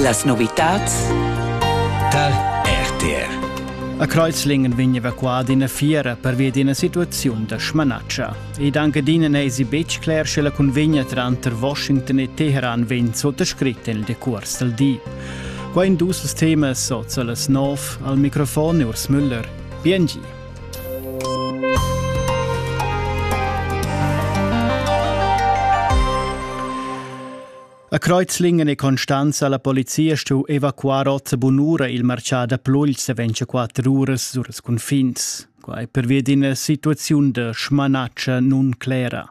Las novitads tar RTR. A Kreuzlingen vegn evacuada ina fiera pervia d'ina situaziun da smanatscha. Ed anche dina n'esi betg cler sche la cunvegna tranter Washington e Teheran vegn sottascrit en il decurs dal di. Qua in dus temas sot las nov al microfon Urs Müller. Bien A Kreuzlingen e Constanza la polizia stu evacuar ot bunura il marchà da Plugls e ventscha quatter uras sur ils cunfins. Quai pervia d'ina situaziun da schmanatscha nun clera.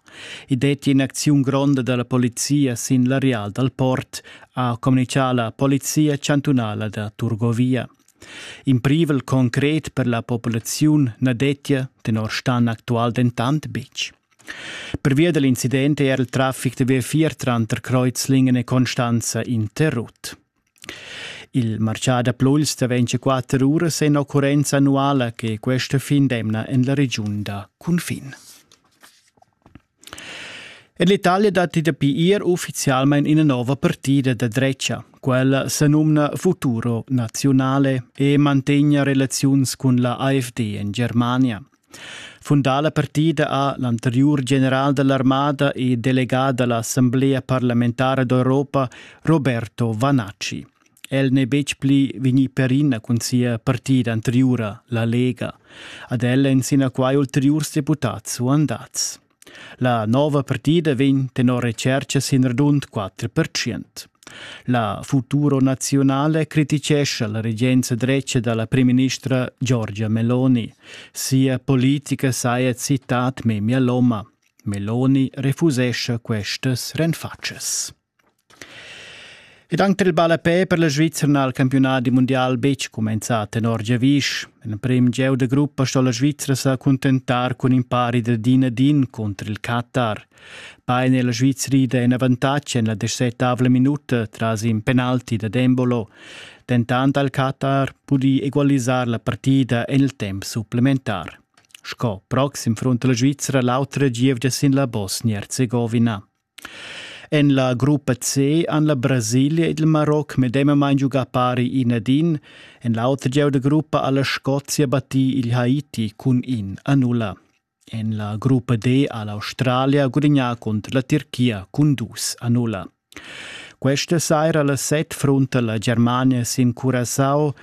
I detti in'acziun gronda dalla polizia sin l'areal dal port, ha communicà la polizia chantunala da Turgovia. In privel concret per la populaziun na dettia tenor Stan actual dentant betg. Pervia da l'incident è er il traffic da V4 tranter Kreuzlingen e Constanza interrut. Il marcià da Pluls da 24 uras è in occurrenza annuala che questa fin d'emna en la regiun da cunfin. En l'Italia datti dapi ier uffizialmain ina nova partida da drecha. Quella se numna Futuro Nazionale e mantegna relaziuns cun la AfD en Germania. Fundà la partida ha l'anteriur general dell'armada e delegà dall'Assemblea parlamentara d'Europa Roberto Vanacci. El n'è betg pli vegnì perina cun sia partida anteriura, la Lega. Ad el èn sinaquai ulteriurs deputads suandads. La nova partida vegn tenor retschercha sin radund 4 La Futuro Nazionale criticescha la regenza dretga da la primministra Giorgia Meloni. Sia politica saja citat memia loma. Meloni refusescha questas renfatschas. Ed anc tar il ballapè per la Svizra n'ha il campiunadi mundial betg cumenzà tenor giavisch. En l'emprim gieu da gruppa sto la Svizra sa cuntentar cun in pari da din ad din cunter il Qatar. Bain è la Svizra ida en avantatg en la desettavla minuta tras in penalti da Dembolo. Dentant ha il Qatar pudì egualisar la partida en il temp supplementar. Sco proxim front la Svizra l'autra gievgia sin la Bosnia-Herzegovina. En la gruppa C han la Brasilia ed il Maroc medemamain giugà pari in ad in. En l'auter gieu da gruppa ha la Scozia battì il Haiti cun in a nulla. En la gruppa D ha l'Australia gudagnà cunter la Turchia cun dus a nulla. Questa saira la set frunta la Germania sin Curacao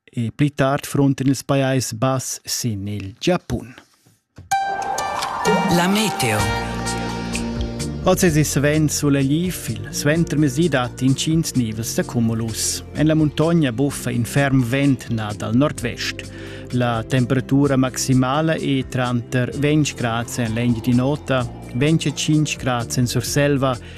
e pli tard fronten ils Pajais Bass sin il Giapun. La meteo. Oz è svent solegliv, il suentermezdi dat intgins nivels da cumulus. En la muntogna buffa in ferm vent nà dal nord-vest. La temperatura maximala è tranter 20 grad en l'engi di nota, 25 grad en Surselva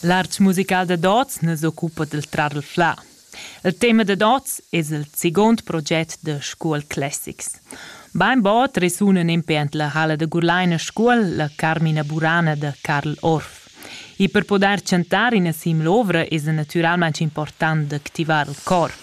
L'art musical dad oz nu s'occupa dal trarflà. Il tema dad oz es il seguond proget da Scuol Classics. Bainbod resunan impè ant la halla da Gurlaina Scuol la Carmina Burana da Carl Orff. E per pudair chantar ina siml'ovra es natüralmaing important d'activar il corp.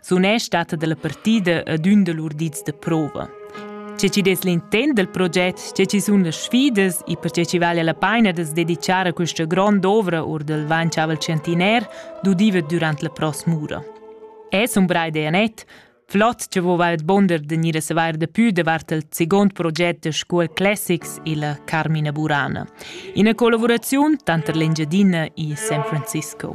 sunesch stata dalla partida ad ün da lur dits da prova. Che ci des l'intent del proget, che ci sun le sfidas e perché ci vale la pena de dedicare questa grande ovra or del Van Chavel Centinaire dudiva durant la prosmura. Es un bra idea net, flott che vova et bonder de nire sevar de più devart il second proget de Scuol Classics e la Carmina Burana, in collaborazione tanter l'Engiadina e San Francisco.